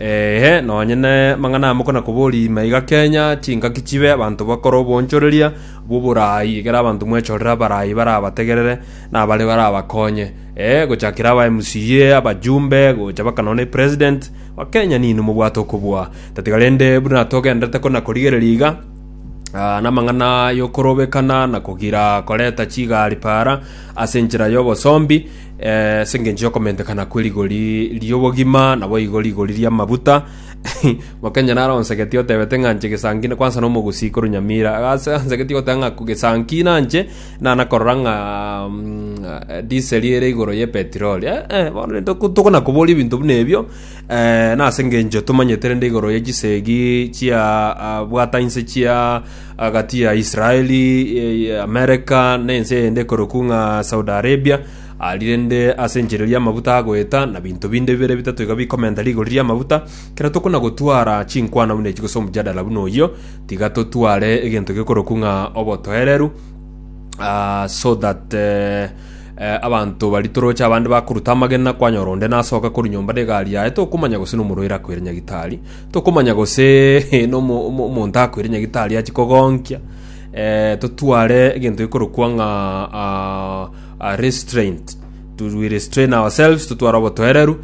Ee, nonye namang'ana amo konakoborie ime iga Kenya, chingaki chibe, abanto bakore obonchoreria bw'oboraai, ekero abanto mwechorere abaraai barabategerere, na abare barabakonye. Ee, gochakera aba MCA, abajumbe, gocha baka nonya na President, Wakenya ninwe mobwate okobua. Tatiga rende buna togenderete konakorigereria iga, ah, namang'ana yokorobekana na kogira koreta chigari para ase enchera y'obosombi, Ase engencho y'okomentekana kwe rigori ri'obogima, naboigo rigori ri'amaguta. Mokenye naro onsegetie otebete ng'a nche gesanki na kwansa nomogusi korwa Nyamira. Ase ansegetie goteba ng'a gesanki na nche nana korora ng'a mm, diesel ere igoro ye petroli. Eh, eh, bono rende toko- tokona koboria ebinto buna ebio, eh, nase engencho tomanyete rende igoro ye chisegi chia ah, bwata inse chia agati ya Israeli, Amerika, na ense eyende ekorokwu ng'a Saudi Arabia, arire inde ase enchera eria amaguta agoeta, na binto binde bibere bitato iga bikomenta rigori ria amaguta. Kera tokona gotwara chinkwana buna echi gose omojadala buna oyio, tiga totware egento gekorokwu ng'a obotoereru, ah, so that eh, eh, abanto baria toroche abande bakoruta amagena, kwanyora onde nasoka korwa nyomba na egari yaye, tokomanya gose nomorwaire akoire nyagitari, Tokomanya gose nomonto akoire nyagitari achie kogonkia, totware egento gekorokwa ng'a restraint, to we restrain ourselves, totware obotoereru,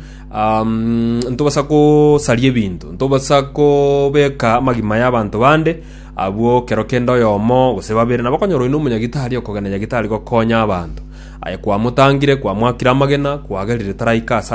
ntobasa gosaria ebinto, ntobasa kobeka amagima y'abanto bande, abwo ekero kende oyomo gose babere nabo okonyora oyo nomonyagitari okogenda nyagitari gokonya abanto, aye kwamotangire, kwamwakire amagena, kwagerire taraika ase.